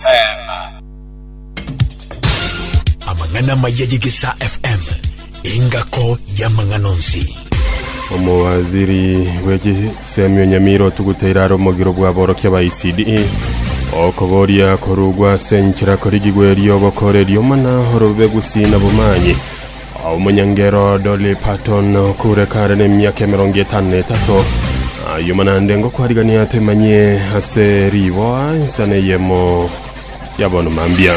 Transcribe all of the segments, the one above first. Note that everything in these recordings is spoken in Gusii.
FM. Amang'ana amaya y'Egesaa FM, engako y'amang'ana onsi. Omowaziri bw'echisemio Nyamira otugute irara omogiro bw'aborokia ba ECD okoboria korugwa ase enchera korigigwa erio obokore riomana orobe gusina bomanyi Omonyangero Dolly Parton, okure kare nemiaka emerongo etano na etato, ayio manande ngokwarigania toimanyie ase riboa ensa neyemo ya bono mambia.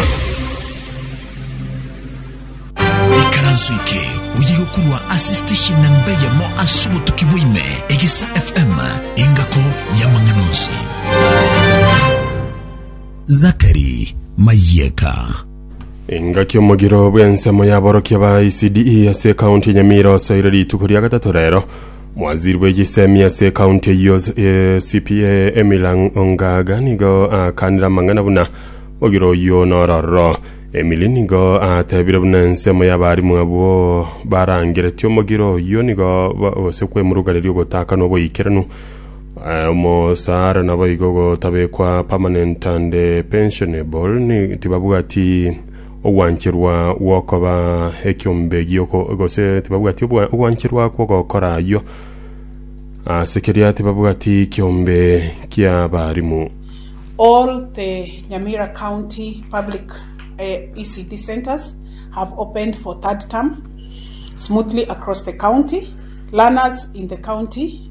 Ikaranso eke oye gokorwa ase station namba eyemo ase obotuki bwaime, Egesa FM, engako y'amang'ana onsi. Zachary Mayieka. Engaki omogiro bw'ensemo y'aborokia ba ECDE ase ekaunti ya Nyamira osoire rituko ria gatato rero. Mwaziri bw'egesemi ase ekaunti eyio eh, CPA Emilang Ongaga nigo akanire amang'ana buna mogiro oyio nororo. Emily nigo atebire buna ensemo y'abarimu abwo barangeretie omogiro oyio nigo ba- gose kwemuruganeria ogotaka noboikeranu Omosaara naboigo gotabekwa permanent and pensionable, ni tibabwati ogwancherwa gwokoba ekiombe gioko gose tibabwati obwa- ogwancherwa kwogokora ayio. Ase keria tibabwati kiombe ki'abarimu. All the Nyamira County Public uh, ECD centers have opened for third term smoothly across the county. Learners in the county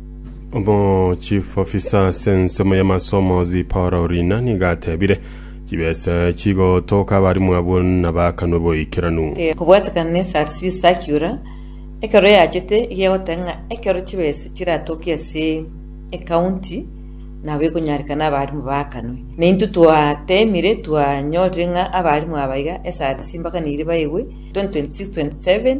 Omochief officer ase ensemo y'amasomo Zipporah Orina nigo atebire, Chibesa chigotoka abarimu abwo nabakanwe boikeranu. Eh, kobwatekana ne SRC circular ekero yachete eria egoteba ng'a ekero chibesa chiratoke ase ecounty nabo ekonyarekana abarimu baakanwe. Naintwe twateemire twanyorire ng'a abarimu aba iga SRC mpaka neiri baegwe 2026, 27,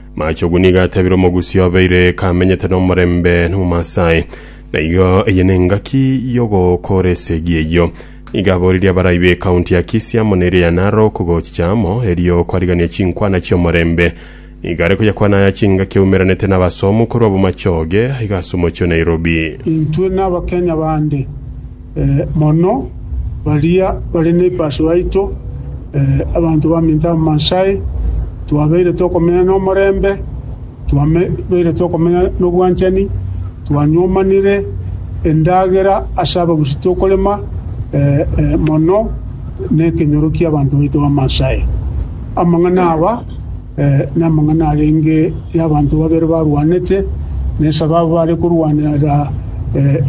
Machogu nigo atebire omogusii obeire kamenyete nomorembe n'Omomasai, na igo eye nengaki y'ogokora esegi eyio. Nigo aboririe abarai b'ekaunti ya Kisii amo na eria ya Narok gochicha amo erio kwarigania chinkwana chi'omorembe. Nigo are koyakwana aya chingaki eumeranete n'abasomu korwa Bomachoge aiga ase omochie o Nairobi. Intwe n'Abakenya bande. mono baria bare nebibasu yaito, abanto baminto amansae, twabeire tokomenya nomorembe, twabeire tokomenya nobwanchani, twanyomanire endagera ase abagusi tokorema mono nekenyoro kiabanto baito b'amansae. Amang'ana aba. Namang'ana arenge y'abanto babere barwanete, na esababu bare korwanera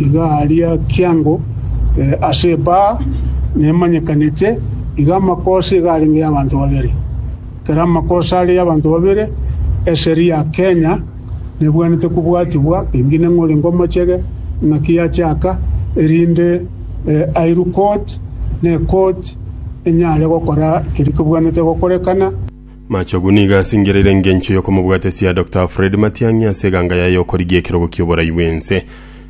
iga aria kiango ase ebaa nemanyekanete, iga amakosa iga arenge y'abanto babere. Ekero amakosa are y'abanto babere, eseri ya Kenya nebwenerete kobwatibwa, pengine ng'a orenge omochege, ng'aki yachaka, erinde airwe court, na ecourt enyare gokora keria kebwenerete gokorekana. Machogu nigo asingereire engencho y'okomobwatesia Doctor Alfred Matiang'i ase eganga yaye y'okorigia ekerogo ki'oborai bw'ense.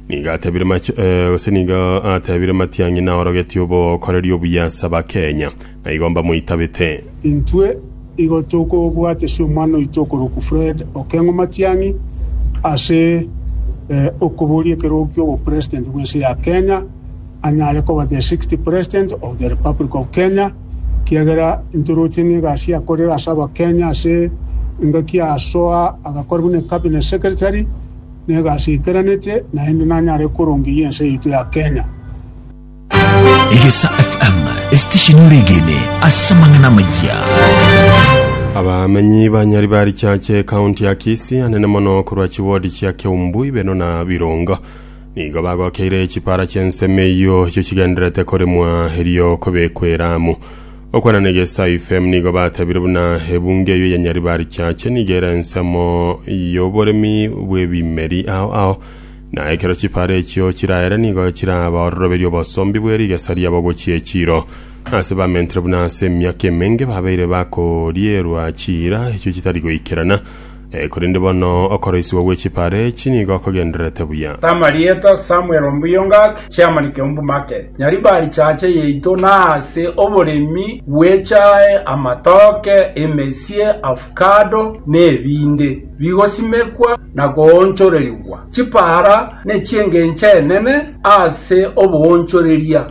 Nigo atebire Mach eh, gose nigo atebire Matiang'i naorogetie obokoreri obuya ase Abakenya, na igo mbamoitabete. Intwe igo tokobwatesia omwana oito okorokwa Fred Okeng'o Matiang'i ase eh, okoboria ekerogo ki'obopresident bw'ense ya Kenya, anyare koba the sixth president of the republic of Kenya. Kiagera intoroche n'egasi yakorire ase abakenya ase engaki ya soa agakora buna cabinet secretary na egasi eikeranete naende nanyare korongeria ense yaito ya Kenya. Egesa FM, esitesheni ore egene ase amang'ana amayia. Abamenyi ba Nyari barichache ekaunti ya Kisii anene mono korwa chiwodi chia Keumbu, Ibeno na Birongo. Nigo bagokeire chipara chi'ensemo eyio echio chigendererete koremwa erio kobekwa eramu. Okwana na egesae ifm nigo batebire buna ebungo eyio ya Nyaribarichache nigo ere ensemo y'oboremi bw'ebimeri ao ao, na ekero chipara echio chiraere nigo chirabaororoberie obosombi bwe rigesa riabo gochia echiro. Ase bamentire buna ase emiaka emenge babeire bakorierwa chiira echio chitari goikerana, Korende bono okoroisigwa gwe chipare echi nigo kogendererete buya. Tama rieta Samuel Ombuyo Ngaki, Chairman Keumbu Market, Nyaribari Chache yaito na ase oboremi bw'echae, amatoke, emesie, avocado na ebinde bigosimekwa na koonchorerigwa. Chipara nechi'engencho enene ase oboonchoreria.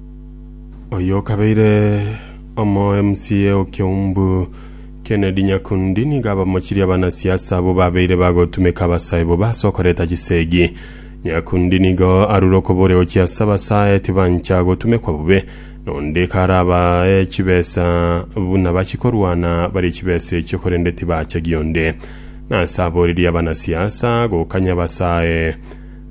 Oyokabeire omo MCA o Kiombu Kennedy Nyakundi niga abamochirie abanasiasa abwo babeire bagotumeka abasae bobe ase okoreta chisegi. Nyakundi nigo arure okoboria gochia ase abasae tibancha gotumekwa bobe, na onde karabae chibesa buna bachikorwana barie chibesa echio korende tibacha gionde. Nase aboririe abanasiasa gokanya abasae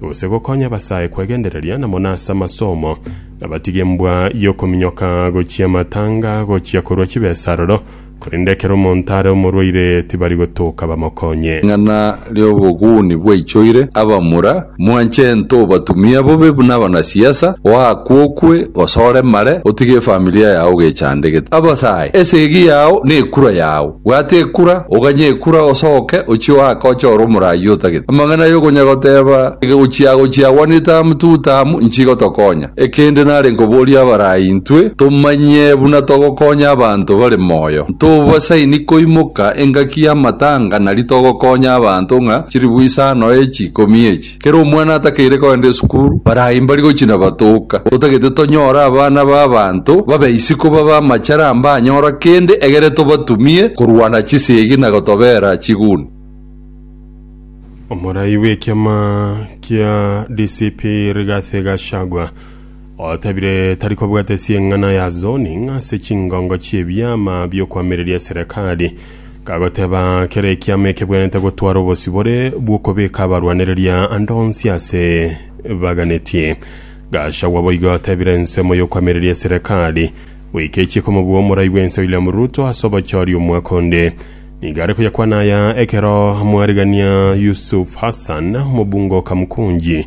gose gokonya abasae kwegendereria na mono ase amasomo, na batige embwa y'okominyoka gochia amatanga gochia korwa chibesa aroro, korende ekero omonto are omorwaire tibari gotoka bamokonye. Ring'ana ri'oboguni bwaichoire abamura, mwanche ento obatumia bobe buna abanasiasa, oakwe okwe gose oremare, otige efamilia yao ogechandegete. Abasae, esegi yao nekura yao. Bwata ekura, oganye ekura, osoke, ochie oake oche ore omoraai otagete. Amang'ana y'okonya goteeba egegochiago chiagwanete amo tigotamu, inchi igotokonya. Ekende nare nkoborie abaraai intwe tomanye buna togokonya abanto bare moyo. Ntobasaini koimoka engaki y'amatanga nari togokonya abanto ng'a chiribu isano echi ikomi echi. Kera omwana atakeire kogenda esukuru, barayi mbari gochia na batoka. Otagete tonyore abana b'abanto babe isiko babe amachara mbanyora kende, egere tobatumie korwa na chisegi na gotobera chiguni. Omorai bw'ekiama kia DCP Rigathi Gachagua otabire tari kobwata ase eng'ana ya zoning ase chingongo chi'ebiama bi'okoamereria serekari. Kagoteba, Kera ekiama ekebwenerete gotwara obosibore bw'okobeka abarwanereria ande onsi ase baganetie. Gachagua boigo atebire ensemo y'okwamireria eserekari, goika echiiko omobua omorai bw'ense William Ruto ase obochori omwaka onde. Nigo are koyakwana aya ekero mwarigania Yusuf Hassan, omobunge o Kamkunji,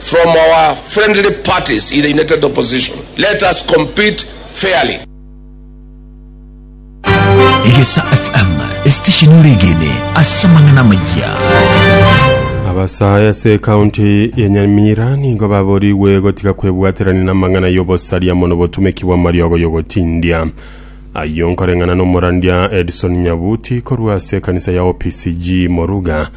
from our friendly parties in the united opposition let us compete fairly. Egesa FM, esitesheni oregene ase amang'ana amayia. Abasaae ase ekaunti ya Nyamira nigo baborigwe gotiga kwebwaterania n'amang'ana y'obosaria mono botumeki bw'amariogo y'ogotindia ayio nkoreng'ana n'omorandia Edson Nyabuti korwa ase ekanisa ya OPCG Moruga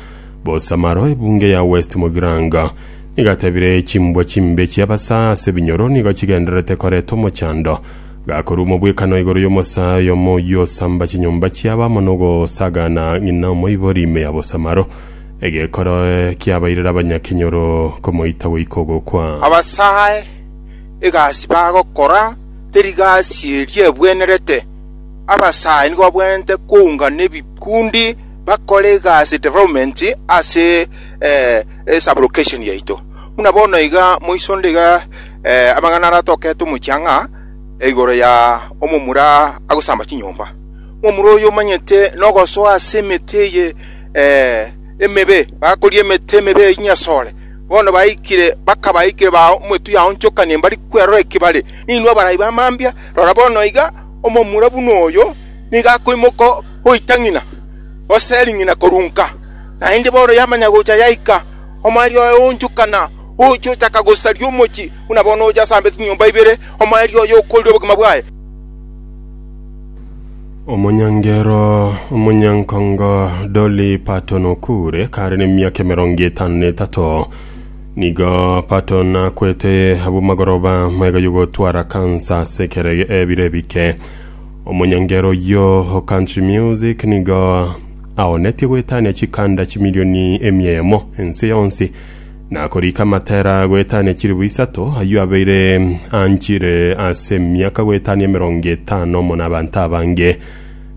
Bosamaro ebunge ya West Mogiranga nigatebire chimbwa chimbe chi'abasaa ase ebinyoro nigo chigendererete koreta omochando gakorua omobwekano igoro y'omosaa oyomo oyio osamba chinyomba chiabo amo nogosagana ng'ina omoibori ime ya bosamaro egekora kiabairera abanyakenyoro komoita goika ogokwa. Abasae egasi bagokora teri gasi eria ebwenerete, abasae nigo babwenerete koungana ebikundi, bakore egasi development ase eh, eh, sublocation yaito buna bono iga moisonde iga eh, amang'ana aratokete omochie ang'a eh, igoro ya omomura agosamba chinyomba omomura oyo omanyete nogosoa ase emete eye eh, emebe bakoria emete emebe eye nyasore bono baikire bakabaikire ba omotu yaonchokanie mbari kwerora ekibare ninwe abarai bamambia rora bono iga omomura buna oyo niga akoimoka goita ng'ina, gose eri ng'ina korunka, naende bono yamanya gocha yaika, omoerio oye oonchokana, ogochia ochaka gosaria omochie, buna bono oche asambe chinyomba ibere, omoerio oye okoorire obogima bwaye. Omonyangero omonyankongo Dolly Parton okuure kare nemiaka emerongo etano na etato. Nigo Parton akwete abwo magoroba maiga y'ogotwara kansa ase ekero ebiro ebike. Omonyangero oyio o Country Music nigo aonetie goetania chikanda chimilioni emiemo ense yonsi, na korika amatera goetania chilifu isato, ayio abeire anchire ase emiaka goetania emerongo etano mono abanto abange.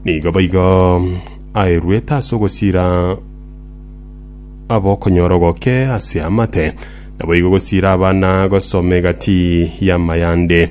Nigo boigo aeruete ase ogosira abokonyora ogoke ase amate, naboigo gosira abana gosoma egati y'amayande.